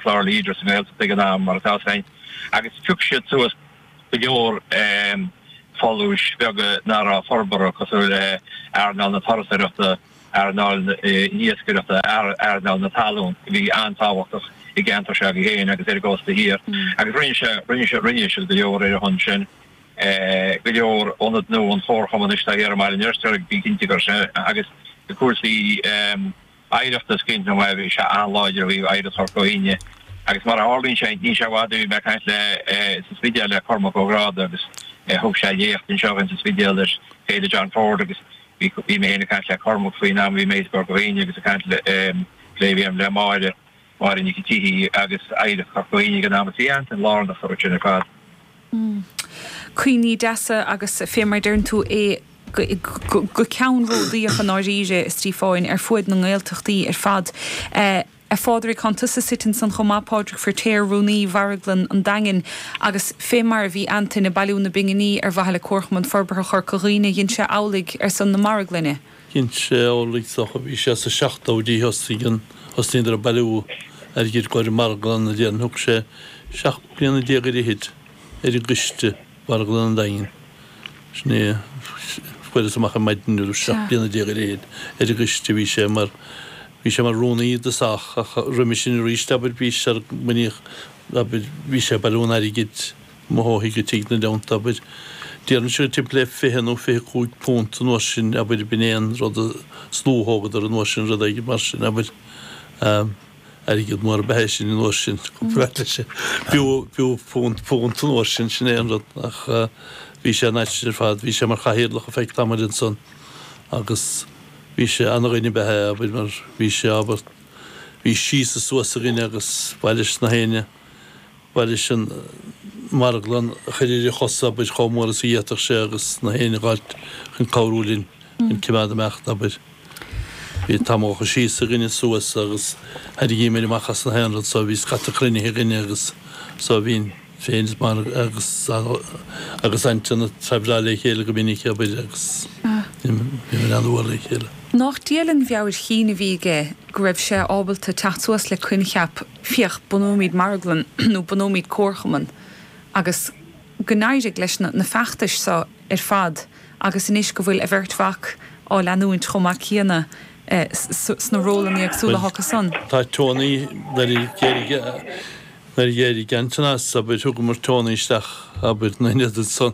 Clár Leader sa Ghaeltacht ag an am, mar atá fós ann, agus phioc siad suas go leor folúis beaga nach raibh forbartha, cosúil le earnáil na turasóireachta, earnáil na hiascaireachta, earnáil na talún, a bhí an-tábhachtach i gceantar Sheoigheach féin agus ar an gcósta thiar, agus rinne sé, rinne sé, rinne siad go leor ar a shon sin. Go leor ionad nó an Comharchumann anois atá thiar i mBaile an Fheirtéaraigh, bí cinnte go raibh sé, agus cúrsaí, Oidhreacht is cinnte mar is an-láidir a bhí Oidhreacht Chorca Dhuibhne agus mar a tharlaíonn sé ní sé i bhfad a bhí mé ag caint le sa Spidéal le Cormac Ó Gráda agus thug sé léacht anseo dhúinn sa Spidéal ag Féile John Ford agus bhí mé féin ag caint le Cormac faoin am a bhí mé thíos i gCorca Dhuibhne agus ag caint le, le, ehm, le Máire Máire Nic an tSíthigh agus Oidhreacht Chorca Dhuibhne ag an am. Bhí Antain lárnach iontu sin ar fad. Cuimhní deasa agus fé mar a deireann tú é, ceannródaíoch i ndáiríre, a Stíofáin, ar fuaid na nGaeltachtaí ar fad. A Phádraig, tánn tusa suite ansan chomh maith, Pádraig Firtéar, Rúnaí Mharglann an Daingin, agus fé mar a bhí Antain ag bailiú na bpinginí ar mhaithe le Comharchumann Forbartha Chorca Dhuibhne dhein sé amhlaidh ar son na Marglainne. cinnte, ó is dócha, bhí sé sa 70idí thosnaigh, an, thosnaíodar ag bailiú airgid i gcomhair marglann a dhéanamh thug sé 17 bliana ar fhichid ar an gcoiste Mharglann an Daingin sin é fuaireas amach ar maidin nuair a bhí 17 bliana ar fhichid ar an gcoiste bhí sé mar bhí sé mar rúnaí i dtosach ach roimhe sin arís abair bhí sé sular bunaíodh abair bhí sé ag bailiú an airgid Ó thigh go tigh an uair sin, abair. D'iarraidís timpeall le fiche nó fiche cúig punt an uair sin, abair, b'in é an rud a shluathógadar an uair sin, rud éigin mar sin, abair. Airgead mór ab ea é sin an uair sin, comparáid leis an, b'fhiú, b'fhiú punt, punt an uair sin, sin é an rud. Ach bhí sé ana-mhaith ar fad, bhí sé mar chathaoirleach ar feadh tamaill ansan agus bhí sé, ana-dhuine ab ea é, abair, mar bhí sé, abair, bhí síos is suas againn agus b'é an t-aon aidhm. Ná ris an marglann a chur ar a chosa, abair, chomh mór is a d'fhéadfadh sé agus na haon rud a fháilt chun cabhrú linn chun cimeád ag imeacht, abair. Bhí amanta síos againn is suas agus thairrigímid amach as na haon rud so bhí scata cruinnithe againn agus so bhínn féin is Margaret agus agus Antain a' traibhreáil le chéile go minic, abair, agus bhímis an-mhór le chéile. Nách diail an mheabhair chinn a bhí aige go raibh sé ábalta teacht suas le coincheap féach, bunóimid marglann nó bunóimid comharchumann agus gur éirigh leis na feachtais seo ar fad agus anois go bhfuil a bheirt mhac á leanúint chomh maith céanna sna rólanna éagsúla acu san. Bhuel, tá Tony, nuair a d'éirigh, nuair a d'éirigh Antain as, abair, thugamar Tony isteach, abair, ina ionad san.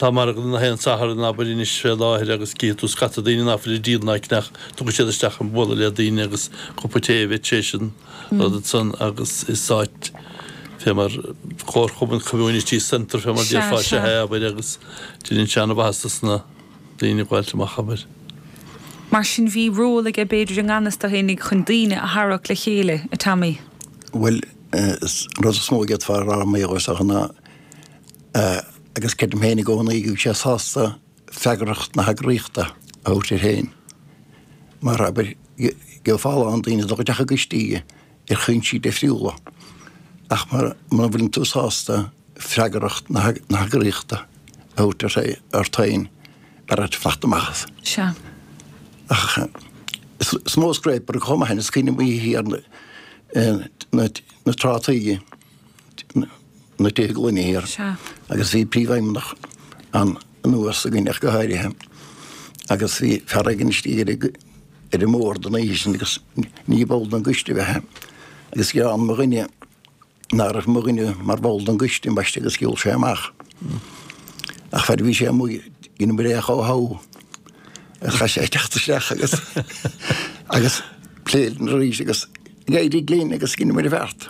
Tá margadh ann gach aon Satharn abair anois fé láthair agus cífidh tú scata daoine ná fuil ag díol ná ag ceannach. Tagann siad isteach chun bualadh le daoine agus cupa té a bheith tar éis an rud ansan agus is áit fé mar comharchumann community centre fé mar a déarfá. Sea, sea, abair agus deineann sé an-mhaitheas dos na daoine gabháilt amach, abair. Mar sin bhí ról aige b'fhéidir i ngan fhios dó fhéinig chun daoine a tharrac le chéile, a Tommy? Bhuel, an rud is mó a d'fhéadfá a rá mar gheall air is dócha ná, agus creidim féin i gcónaí go bhfuil sé sásta freagracht na heagraíochta a thabhairt air féin. Mar, abair, gheofá a lán daoine dul isteach i gcoistí ar chúinsí difriúla, ach mura bhfuileann tú sásta freagracht na heagraíochta a thabhairt ort féin, b'fhearra dhuit fanacht amach as. Ach is mó scrap chomh maith, is cuimhin liom oíche ar na trátaí. na Tithe Gloine Thiar agus bhí príomhfheidhmeannach an anuas againn ach go háirithe agus bhí fear éigin istigh ar an ar an mbord an oíche sin agus ní ball den gcoiste a bhí ann agus gheall mo dhuine ná raibh mo dhuine mar bhall den gcoiste baiste agus shiúl sé amach. Ach fear a bhí sé amuigh ina mbuille chomh how agus chaith sé teacht isteach agus agus pléadh arís é agus D'éirigh linn agus dhein muid an bheart.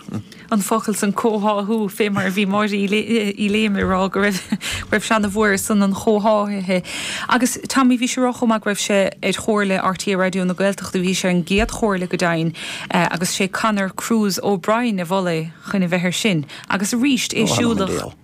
an focal san comhtháthú fé mar a bhí Máire Uí Léime ag rá go raibh raibh sé ana mhór ar son an chomhtháthaithe agus Tommy bhí sé ag rá chomh maith go raibh sé ar Chomhairle RTÉ Raidió na Gaeltachta bhí sé ar an gcéad Chomhairle go deimhin agus sé Conor Cruise O'Brien a mhol é chun a bheith ar sin agus arís é siúlach